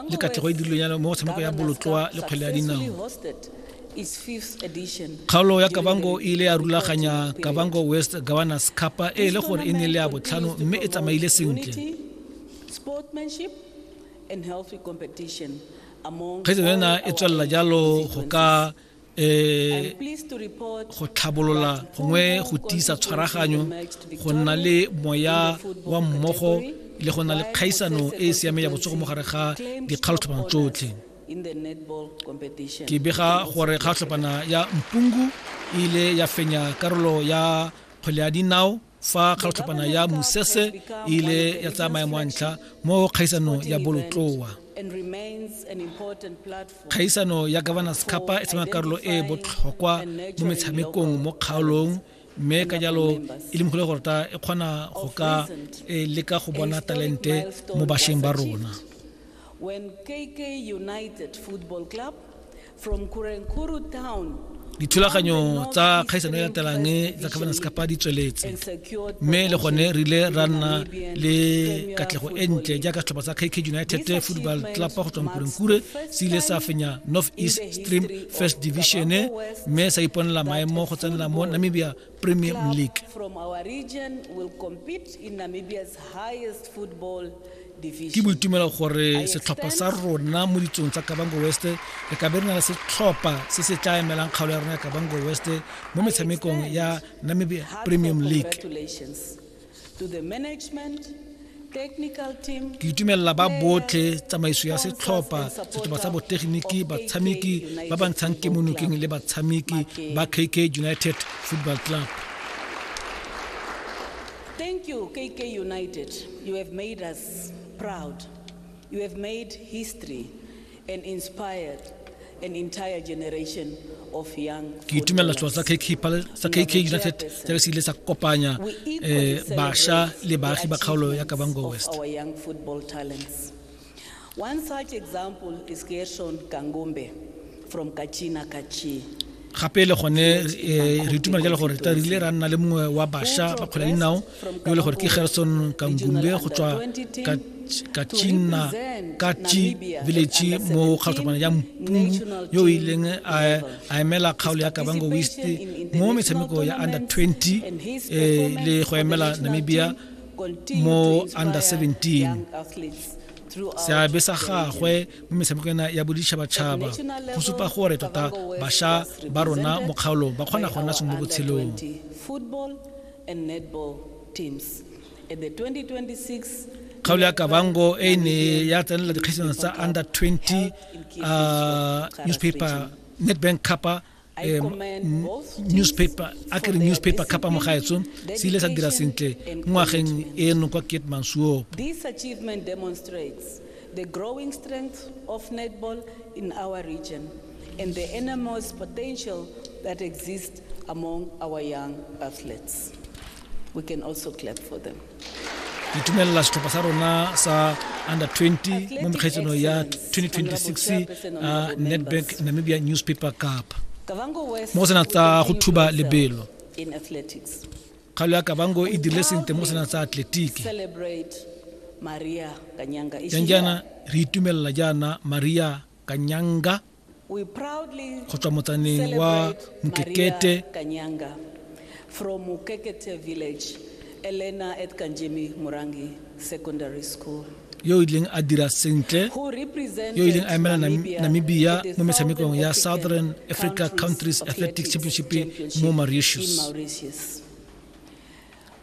le katlego e dirilweng yana mo go tshameko ya bolotloa le kgwele ya dinao kgaolo ya kabango e ile ya rulaganya kabango west governors capa e le gore e ne le ya botlhano mme e tsamaile sentle kgetso ena e tswelela jalo go ka eh go tlhabolola gongwe go tiisa tshwaraganyo go nna le moya wa mmogo le go nna le kgaisano e e siameng ya botsogo mo gare ga dikgalotlhopana tsotlhe ke bega gore kgatlhopana ya mpungu e ile ya fenya karolo ya kgwele ya dinao fa kgatlhotlhapana ya mosese e ile ya tsaya maemo a ntlha mo kgaisanong ya bolotloa kgaisano ya governors capa e tshamaya karolo e e botlhokwa mo metshamekong mo kgaolong mme ka jalo e le mogolo gorta e kgona go ka e leka go bona talente mo bašweng ba rona when KK United Football Club From Kurenkuru town dithulaganyo tsa kgaisano e latelang tsa governance kapa di tsweletse mme le gone re ile ra nna le katlego e ntle jaaka setlhopha sa kk united football club go tswang kurenkure se ile sa fenya north east stream first division mme sa iponela maemo go tsenela mo namibia Premium club League. from our region will compete in Namibia's highest football ke division. boitumelo gore setlhopha sa rona mo ditsong tsa kabango west re ka be re na le setlhopha se se tla emelang kgaolo ya rona ya kabango west mo metshamekong ya namibia Heartfelt premium league Congratulations Ke itumelela ba botlhe tsamaiso ya setlhopha setlhopha sa botegeniki batshameki ba ba ntshang kemonokeng le batshameki ba KK United Football Club. Thank you KK United. You have made us proud. You have made history. ke itumelela selo sa kk united se re se ile sa kopanya um eh, bašwa le baagi ba kgaolo ya kabango west One such example is Gershon Kangumbe from Kachina Kachi. gape le gone eh, re itumela jalo gore re rile ra nna le mongwe wa bašwa ba kgwele dinao yo e le gore ke gerson kangumbe go tswa kachina kachi village mo kgatlhokwana ya mpungu yo o ileng a emela kgaolo ya kabango west mo metshameko ya under 20 eh, le go emela namibia mo under 17 seabe sa gagwe mo metshameko ena ya boditšhabatšhaba go supa gore tota bašwa ba rona mo kgaolong ba kgona go nna seng mo botshelong kgaolo ya kabango e ne ya tsenela dikgaisano tsa under 20 uh, newspaper nedbank capa um newspaper a kere newspaper kapa mogaetso se ile sa dira sentle ngwageng eno kwa kitmansuop the growing strength of netball in our region and the enormous potential that exists among our young athletes. We can also clap for them. Ke itumelela setlhopha sa rona sa under 20 mo mekgaitsano ya 2026 uh, Nedbank Namibia Newspaper Cup. Mo go sena tsa go thuba lebelo. In athletics. Kgalo ya Kavango e dirile sentle mo sena tsa atletiki. Celebrate Maria Kanyanga. Janjana re itumelela jaana Maria Kanyanga. go tswa motsaneng wa mokekete from Mukekete village, Elena at Kanjemi Murangi Secondary School. yo o ileng a dira sentle yo o ileng a emela namibia mo metshamekong ya southern africa countries athletic championship mo mauritius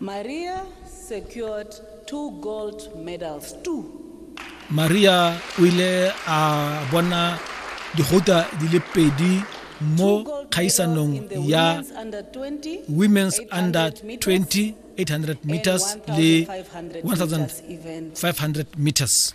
Maria secured two gold medals too. Maria o ile a bona digota di le pedi mo kgaisanong ya Women's Under 20 800 meters le 1500 meters.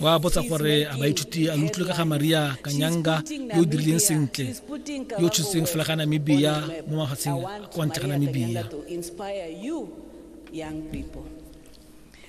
wa botsa gore a baithuti a lo utlwe ka ga maria kanyanga yo o dirileng sentle yo o tshotseng fela ga namibia mo mafatsheng kwa ntle ga namibia